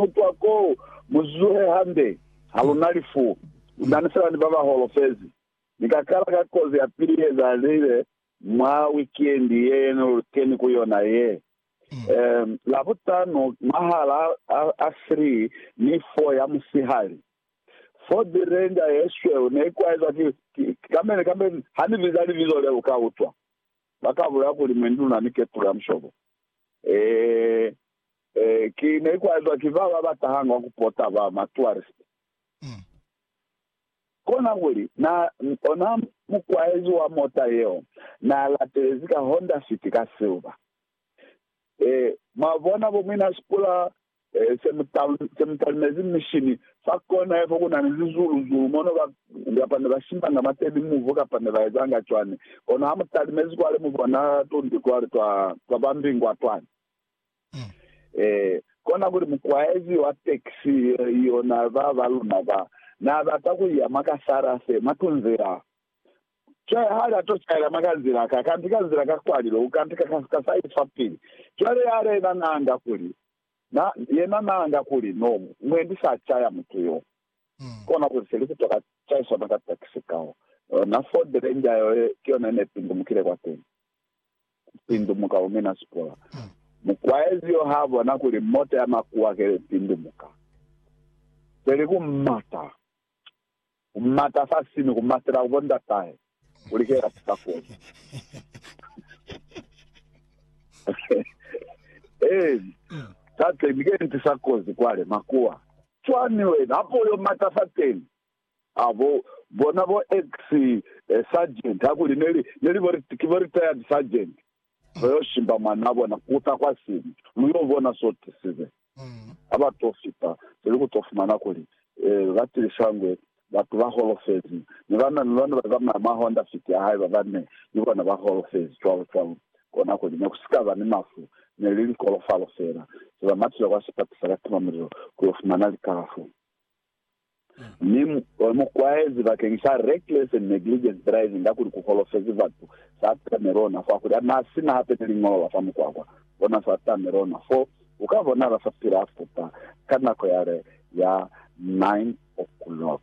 Ku twa ko, mu zuhe hande. Ha lu na lifu. Lu nani fela ni ba ba holofezi. Ni ka kala ka kozi ya pili ye ezahalize mwa wikendi ye ne lu keni ku yona ye, um, Labutano mwahal'a a, a three ni four ya musihali. Ford Ranger ye sweu ne i kwaezwa ki, ki, kambe, kambe ha ni biza libizo leo, u ka utwa. Ba ka bulela kuli, Mwendi, lu na ni ketulu ya mushobo. Ee. Ki ne ikwazwa ki ba ba ba tahanga ku pota ba ma tourist. Kona kuli, na, ona mukwaezi wa mota yeo na latelezi ka Honda City ka silver. Ee, mwa bona, bo muina sipula se mu, se mu talimezi mishini fa kona ye fo ku na ni lizulu, zulu mono ba, kapa ne ba shimbanga mateni muvu, kapa ne ba ezanga cwani. Kono ha mu talimezi kwale, mu bona tundi kwale twa, twa ba mbingwa twani. Ee, kona kuli mukwaezi wa taxi yo na ba ba luna ba na bata ku iya mwa ka Sarase, mwa tunzila. Cwale hali ato caela mwa ka nzila, ka kantika nzila ka kwalilo, u kantika ka, ka side fa pili. Cwale yale yena na anga kuli, na, yena na anga kuli, No, mwendi sa caya mutu yo. Kona kuli se li kutwa ka caiswa mwa ka taxi kao. Na Ford Ranger yo, ki yona ye ne pindumukile kwateni. ku pindumuka ku mina sipola. Mukwaezi yo ha bona kuli mota ya makuwa ke li pindumuka, peli ku mata, ku mata fa sini, ku matela ku bo ndatahe kuli ke ya sika koti. Ee, tateni, ke nti sa kozi kwale, makuwa. Cwani wena, hape u yo mata fateni? Ha bo bona bo ex sergeant hakuli ne li ne li bo ki bo retired sergeant ba yo shimba mwanaa bona ku ta kwa sini lu yo bona so tisize ha ba to fita pili ku to fumana kuli eh ba tilisa ngwe batu ba holofezi ne ba na ni lona ba zamaya mwa Honda Fit ya hae ba ba ne ni bona ba holofezi cwalo cwalo kona kuli ne ku si ka ba ni mafu ne li likolofalo fela se ba matile kwa sipatisa ka timamulilo ku yo fumana likalafo. Mi mu kwaezi bakeng sa reckless and negligent driving kakuli ku holofezi batu, sa tame lona fo kakuli na si na hape ni liñolo la fa mukwakwa. Bona sa tame lona fo, u ka bona la sa pila futa ka nako yale ya 9 o'clock.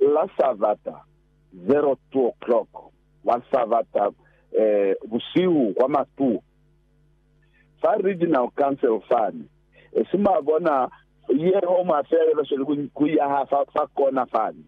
La sa bata 02 o'clock, la sa bata, eh, busihu kwa matu, fa Regional Council fani, esi mwa bona yeo mwa feelelosweli ku, ku yaha fa, fa kona fani,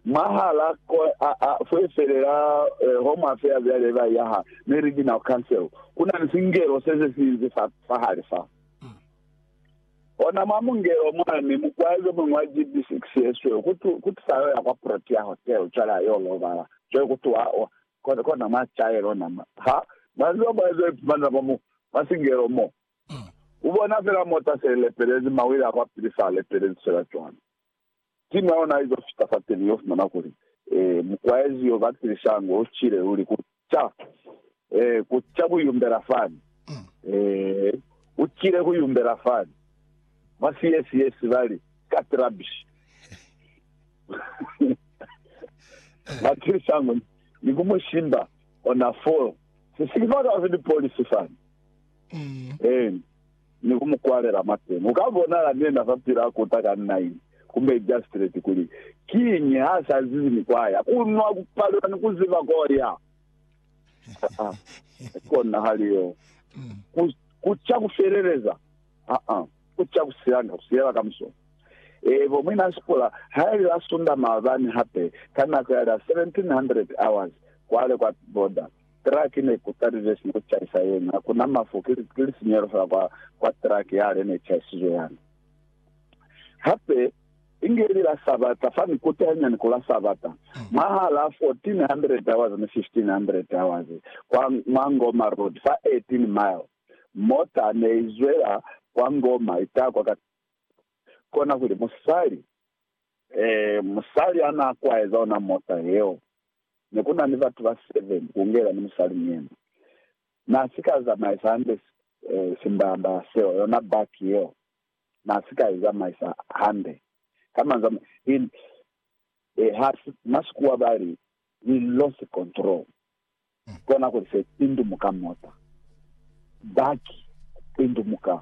mwahala ko, a, a, fwefelela e, ho mwa feya byale ba yaha ni Regional Council, ku na ni singelo se se sinzi fa, fahali fa. Ona mwa mungelo mwani, mukwai yo muñwi wa GBCX yesweu, ku tu, ku tu fa yo ya kwa Protea Hotel, cwale a yo lobala. Cwale ku tuha, Kona mwa sicaelo na ha ba ziba mwa ze ipumanela mwa mu, mwa singelo mo. U bona fela mota se i lepelezi, mawili a kwa pili sa lepelezi fela cwalo. Simu ya ona izo fita fateni, yo fumana kuli, Ee, mukwaezi yo, Batlili Shango, u cile, uli ku ca, ee, ku ca ku yumbela fani. Ee, u cile ku yumbela fani. Mwa siye siye, sibali, Cut rubbish. Matilsango ni ku mu shimba ona foo sisiki fa ka fiti polisi fani. Mm. Eh, ni ku mu kwalela mateni. U ka bonala nena fa pila a kuta ka nine kumbe ijastreti kuli kiñi ha sa zizi ni kwa ya. Ku nwa, ku palelwa ni ku ziba ko ya. Ah, ah. Kona hali yo. Mm. Ku, ku ca ku feleleza. Ah, ah. Ku ca ku silanga ku silela kamuso. Eebo, Mwina Sikola ha ile a sunda maabani hape ka nako yale ya 1700 hours kwale kwa border. Truck ne ku talile sina ku caisa yena. Ha ku na mafu, ki lisinyehelo fela kwa, kwa truck yale ne caisizwe yani. Hape, inge ili la Sabata, fani kutahanyani ku la Sabata, mwahal'a 1400 hours ni 1500 hours, kwa, mwa Ngoma Road, fa 18 mile. Mota ne i zwela kwa ngoma i takwa ka kona kuli musali, ee, musali a n'a kwaeza ona mota yeo. Ne ku na ni batu ba seven, ku ngela ni musali ni yena. N'a si ka zamaisa hande simbalambalaa seo, yona baki yeo, n'a si ka i zamaisa hande. Ka manzwi a mañi, he, he, ha si, Masikua ba li, he lost control. Kona kuli se pindumuka mota. Baki pindumuka.